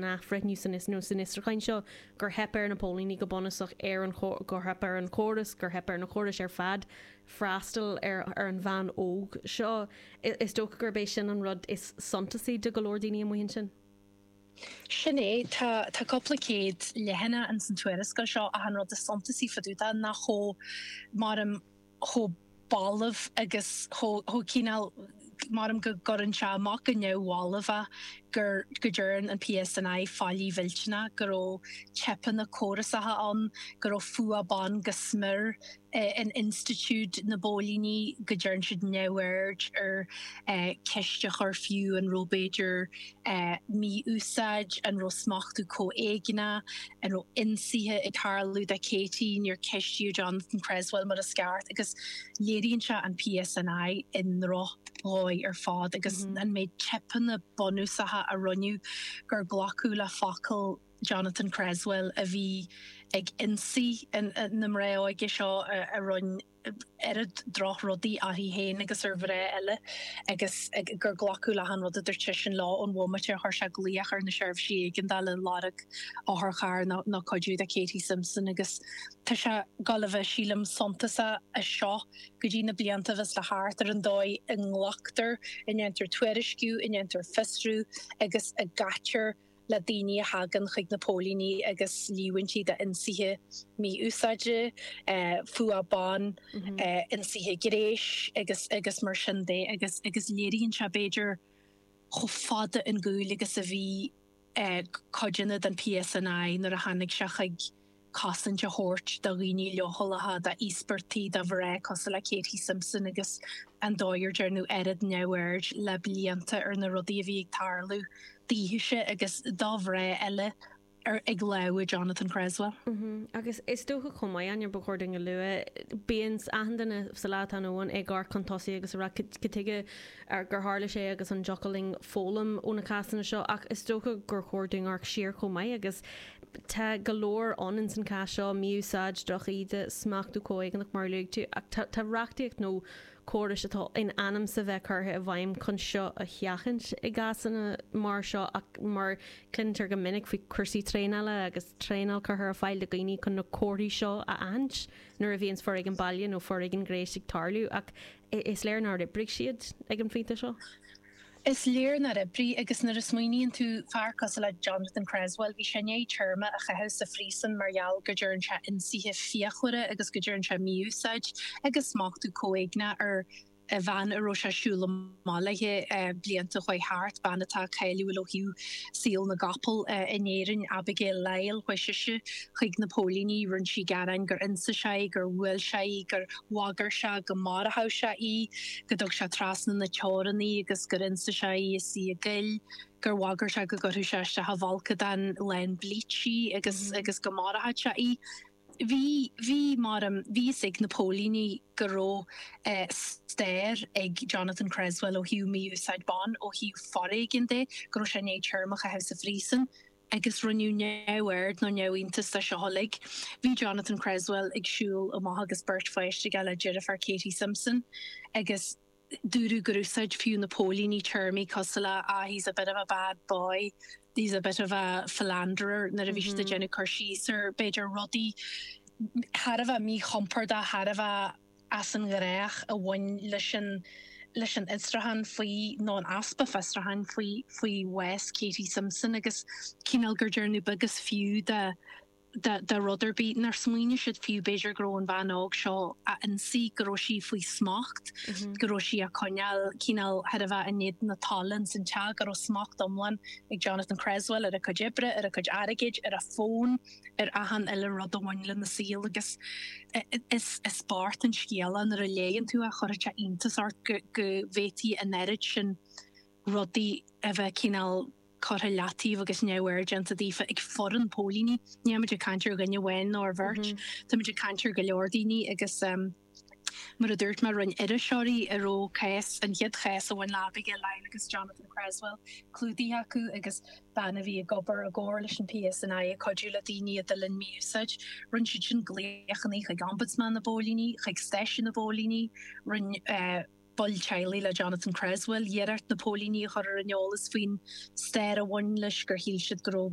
athbhreithniú san fhiosrúchán seo gur theip ar na póilíní go bunúsach, ar an gur theip ar an chóras, gur theip ar na córais ar fad freastal ar an bhean óg seo. Is dócha gurb é sin an rud is suntasaí do go leor daoine amuigh ansin. Sin é, tá cúpla céad leathanach in san tuarascáil seo ach an rud is suntasaí faoi dtaobh de ná chomh chomh balbh agus chomh cineál, mar, am, go gcuireann sé amach go neamhbhalbh é, gur, go dtearn an PSNI faillí mhillteanach, go raibh teipeanna córasacha ann, go raibh fuath ban go smior in institiúid na bpóilíní, go dtearn siad neamhaird ar cheist a chur fiú an raibh b'fhéidir, mí-úsáid, an raibh smachtú comhéigneach, an raibh ionsaithe ag tarlú do Katie, níor ceistíodh Jonathan Cresswell mar is ceart agus léiríonn sé an PSNI i ndroch-dhóigh ar fad agus an méid teipeanna bunúsacha a rinneadh gur glacadh le focal Jonathan Cresswell a bhí ag ionsaí na mná óige seo, a rinn oiread drochrudaí uirthi féin agus ar mhná eile agus gur glacadh le achan rud a dúirt seisean leo ón bhomaite ar chuir sé glaoch ar na seirbhísí éigeandála ag lorg otharcharr nó cuidiú do Katie Simpson agus tá sé ag goil a bheith, sílim, suntasach as seo go dtí na blianta a bheas le theacht ar an dóigh a nglactar, a ndéantar tuairisciú, a ndéantar fiosrú agus a gcaitear. le daoine a thagann chuig na póilíní agus líomhaintí d'ionsaithe, mí-úsáide, fuath ban, ionsaithe gnéis agus agus mar sin de agus agus léiríonn sé b'fhéidir chomh fada ar gcúl agus a bhí cuideanna den PSNI nuair a tháinig sé chuig cosaint a thabhairt do dhaoine leochaileacha, do íospartaigh, do mhná cosúil le Katie Simpson agus an dóigh ar dtearnadh oiread neamhaird le blianta ar na rudaí a bhí ag tarlú daoithise agus do mhná eile ag lámha Jonathan Creswell. Agus is dócha chomh maith, Áine, ba chóir dúinn a lua, bíonn achan duine sa lá atá inniu ann ag amharc chun tosaigh agus ag rá cad tuige gur tharla sé agus an dtiocfadh linn foghlaim ó na cásanna seo ach is dócha gur chóir dúinn amharc siar chomh maith agus Tá go leor ann in san cás seo, mí-úsáid, droch íde, smachtú comhéigneach mar a luaigh tú, ach tá tá reachtaíocht nó córais atá in ainm is a bheith curtha i bhfeidhm chun seo a sheachaint i gcásanna mar seo ach mar cluintear go minic faoi cúrsaí traenála agus traenáil curtha ar fáil do dhaoine chun na comharthaí seo a aithint nuair a bhíonns foréigean baile nó foréigean gnéis ag tarlú ach is léir nár oibrigh siad ag an phointe seo. Is léir nár oibrigh agus nuair a smaoiníonn tú, fear cosúil le Jonathan Creswell, bhí sé i ndiaidh téarma a chaitheamh sa phríosún mar gheall go dtearn sé ionsaithe fíochmhara agus go dtearn sé mí-úsáid agus smachtú comhéigneach ar bhean a raibh sé ag siúl amach léi blianta chuaigh thart, bean atá cáiliúil ó thaobh saol na gcapall in Éirinn, Abigail Lyle, chuaigh sise chuig na póilíní, rinne sí gearáin gur ionsaigh sé í, gur bhuail sé í, gur. bhagair sé go marbhadh sé í, go dtug sé treasna na teorann í agus gur ionsaigh sé í is í i gcoill, gur bhagair sé go gcuirfeadh sé isteach i bhfolcadán lán bleach í agus agus go marbhadh sé í. Bhí, bhí, mar a, bhí a fhios ag na póilíní go raibh eh stair ag Jonathan Creswell ó thaobh mí-úsáid ban, ó thaobh foréigin de, go raibh sé i ndiaidh téarma a chaitheamh sa phríosún. agus rinneadh neamhaird nó neamhiontas de seo uilig. Bhí Jonathan Creswell ag siúl amach agus beirt pháiste aige le deirfiúr Katie Simpson agus dúradh gur úsáid fiú na póilíní téarmaí cosúil le ah, he's a bit of a bad boy, he's a bit of a philanderer nuair a bhí siad ag déanamh cur síos ar, b'fhéidir, rudaí thar a bheith míchompordach, thar a bheith. as an ghnách a bhain leis an leis an fhiosrúchán faoi nó an easpa fiosrúcháin faoi faoi bhás Katie Simpson agus cineál gur dearnadh beag is fiú de de de rud ar bith nár smaoinigh siad fiú b'fhéidir go raibh an bhean óg seo á ionsaí go raibh sí faoi smacht go raibh sí á coinneáil cineál chóir a bheith i ngéibheann ansin san teach go raibh smacht iomlán ag Jonathan Creswell ar a cuid oibre ar a cuid airgid ar a fón ar achan uile rud a bhain lena saol agus is bocht an scéal é nuair a léigheann tú é chuirfeadh sé iontas ort go bhféadfadh an oiread sin rudaí a bheith cineál curtha i leataobh agus neamhaird déanta daofa ag foireann póilíní. Nílimid ag caint ar dhuine amháin nó ar bheirt, táimid ag caint ar go leor daoine agus. Mar a dúirt mé, rinn iriseoirí a raibh cás, an chéad chás a bhain le Abigail Lyle agus Jonathan Creswell, clúdaithe acu agus bean a bhí ag obair i gcomhar leis an PSNI ag cuidiú le daoine a d'fhulaing mí-úsáid. Rinn siad sin glaochanna chuig Ombudsman na bPóilíní, chuig stáisiún na bpóilíní, rinn baill teaghlaigh le Jonathan Creswell iarracht na póilíní a chur ar an eolas faoin stair a bhain leis gur shíl siad go raibh